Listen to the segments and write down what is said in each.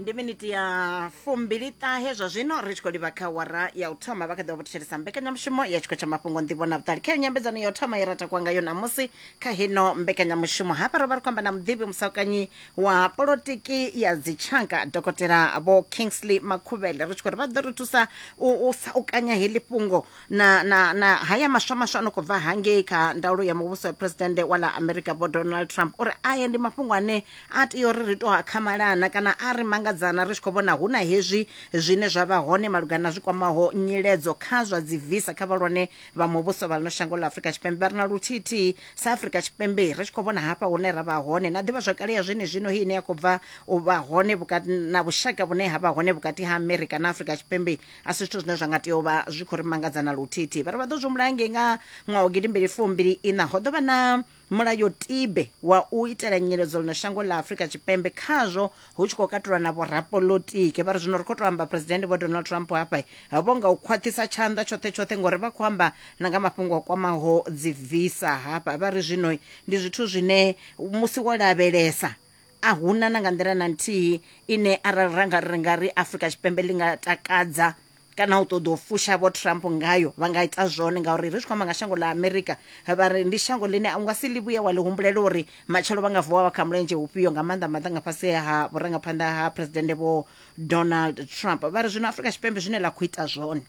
ndi miniti ya fumbili ṱahe zwa zwino ri tshi khou livha kha wara ya u thoma vha kha ḓivha vho thetshelesa mbekanyamushumo ya tshikho tsha mafhungo nḓivho na vhuṱali kha yo nyambedzano ya u thoma ye ra takuwa ngayo ṋamusi kha hino mbekanyamushumo hafha ro vha ri khou amba na muḓivhi musakanyi wa polotiki ya dzitshaka dokotela vho kingsley makhuvhele ri tshi khou ri vha ḓo ri thusa u, u saukanya heḽi fhungo na, na, na haya maswa maswa a no khou bva hangei kha ndaulo ya muvhuso ya phuresidennde wa ḽa america vho donald trump uri aya ndi mafhungo ane a tea uri ri to a khamalana kana a ri mangadzana ri tshi khou vhona hu na hezwi zwine zwa vha hone malugana na zwi kwamaho nyiledzo kha zwa dzi visa kha vhalwane vha muvhuso vha ḽino shango ḽa afrika tshipembe vha ri na luthithihi sa afrika tshipembe ri tshi khou vhona hafha hune ra vha hone na ḓivha zwakale ya zwene zwino hei ine ya khou bva u vha hone vhukati na vhushaka vhune ha vha hone vhukati ha america na afrika tshipembe a si zwithu zwine zwa nga tea u vha zwi khou ri mangadza na luthithi vha ri vha ḓo zwi mulayo ngei nga ṅwaha wa gidimbili fumbili ina ho ḓo vha na mulayotibe wa u itela nyeledzo ḽino shango ḽa afurika tshipembe khazwo hu tshi khou katulwa na vhorapolotiki vha ri zwino ri khou tou amba phuresidennde vho donald trump hafha vho nga u khwaṱhisa tshanḓa tshoṱhe tshoṱhe ngori vha khou amba na nga mafhungo a kwamaho dzi visa hafha vha ri zwino ndi zwithu zwine musi wo lavhelesa A hu na na nga nḓila na nthihi ine arali ra nga ri nga ri Afrika Tshipembe ḽi nga takadza kana u ṱoḓa u fusha vho Trump ngayo vha nga ita zwone ngauri ri tshi khou amba nga shango ḽa Amerika vha ri ndi shango ḽine u nga si ḽi vhuye wa ḽi humbulela uri matshelo vha nga vuwa vha kha mulenzhe ufhio nga maanḓa maanḓa nga fhasi ha vhurangaphanḓa ha phuresidennde vho Donald Trump vha ri zwino Afrika Tshipembe zwine ḽa khou ita zwone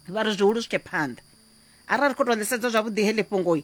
vha ri zwihulu swike phanḓa arali ri khou tou ḽisedza zwavhuḓi heḽi fhungoi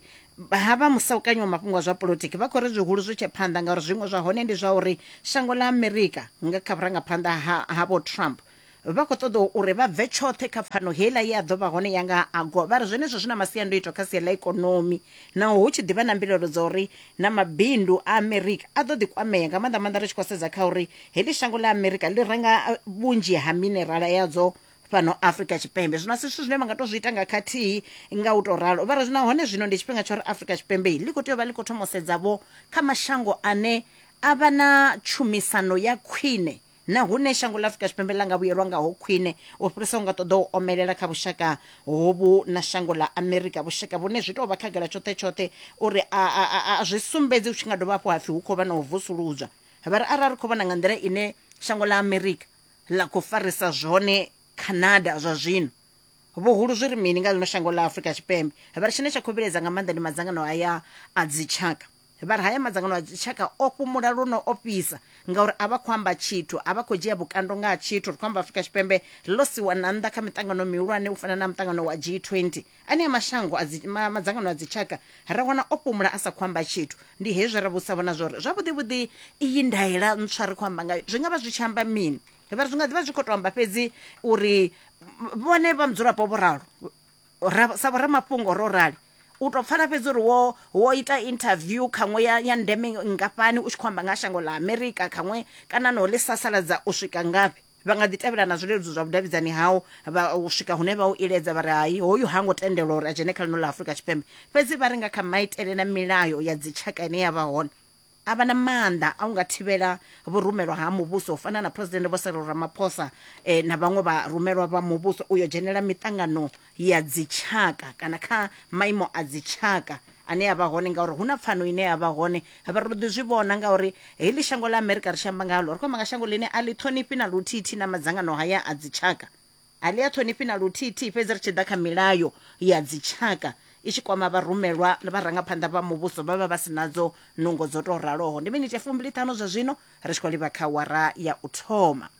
ha vha musaukanyi wa mafhungo a zwa politiki vha khou ri zwihulu zwi tshe phanḓa ngauri zwiṅwe zwa hone ndi zwa uri shango ḽa amerika nga kha vhurangaphanḓa havho trump vha khou ṱoḓa uri vha bve tshoṱhe kha pfano heiḽa ye a ḓo vha hone ya nga agowa vha ri zwenezwo zwi na masiandoitwa kha sia ḽa ikonomi naho hu tshi ḓivha na mbilaelo dza uri na mabindu a amerika a ḓo ḓi kwamea nga maanḓa maanḓa ri tshi khou sedza kha uri heḽi shango ḽa amerika ḽi renga vhunzhi ha minerala yadzo fhano afrika tshipembe zwino a si zwithu zwine vha nga to zwi ita nga khathihi nga u to ralo vha ri nahone zwino ndi tshifhinga tsha uri afrika tshipembe ḽi khou tea u vha ḽi khou thoma u sedzavho kha mashango ane a vha na tshumisano ya khwine na hune shango ḽa afrika tshipembe ḽa nga vhuyelwa ngaho khwine u fhirisa u nga ṱoḓa u omelela kha vhushaka hovhu na shango ḽa amerika vhushaka vhune zwi tou vha khagala tshoṱhe tshoṱhe uri a, a, a, a zwi sumbedzi hu tshi nga dovha hafhu hapfi hu khou vha na u vusuludzwa vha ri arali ri khou vhona nga nḓila ine shango ḽa amerika ḽa khou farisa zwone Canada zwa zwino. Vhuhulu zwi ri mini nga ḽino shango ḽa Afrika Tshipembe? Vha ri tshine tsha khou vhilaedza nga maanḓa ndi madzangano haya a dzitshaka. Vha ri haya madzangano a dzitshaka o fhumula luno o fhisa ngauri a vha khou amba tshithu, a vha khou dzhia vhukando nga ha tshithu. Ri khou amba Afrika Tshipembe ḽo siwa na nnḓa kha miṱangano mihulwane u fana na muṱangano wa G20 anea mashango a dzi, ma, madzangano a dzitshaka ra wana o fhumula a sa khou amba tshithu ndi hezwi ra vhusa vhona zwori zwavhuḓivhuḓi iyi ndaela ntswa ri khou amba ngayo zwi nga vha zwi tshi amba mini vha ri zwi nga ḓivha zwi khou tou amba fhedzi uri vhone vha mudzulapo vho ralo ra- sa vhoramafhungo ro rali u tou pfala fhedzi uri wo wo ita interview khaṅwe ya, ya ndeme ngafhani u tshi khou amba nga ha shango ḽa amerika khaṅwe kana no ḽi sasaladza u swika ngafhi Vha nga ḓi tevhela na zwileludzi zwa vhudavhidzani hau vha u swika hune vha u iledza vha ri hai hoyu ha ngo tendelwa uri a dzhene kha ḽino ḽa Afrika Tshipembe. Fhedzi vha ri nga kha maitele na milayo ya dzitshaka ine ya vha hone, a vha na maanḓa a u nga thivhela vhurumelwa ha muvhuso u fana na Phresidennde Vho Cyril Ramaphosa na vhaṅwe vharumelwa vha muvhuso u yo dzhenela miṱangano ya dzitshaka kana kha maimo a dzitshaka ane a vha hone ngauri hu na pfano ine ya vha hone vha ri ḓi zwi vhona ngauri heḽi shango ḽa amerika ri shamba ngalo ri khou amba nga shango ḽine a ḽi ṱhonifhi na luthithi na madzangano haya a dzitshaka a ḽi a ṱhonifhi na luthithi fhedzi ri tshi ḓa kha milayo ya dzitshaka i tshi kwama vharumelwa vharangaphanḓa vha muvhuso vha vha vha si nadzo nungo dzo tou raloho ndi miniti ya fumbili ṱhanu zwa zwino ri tshi khou livha kha wara ya u thoma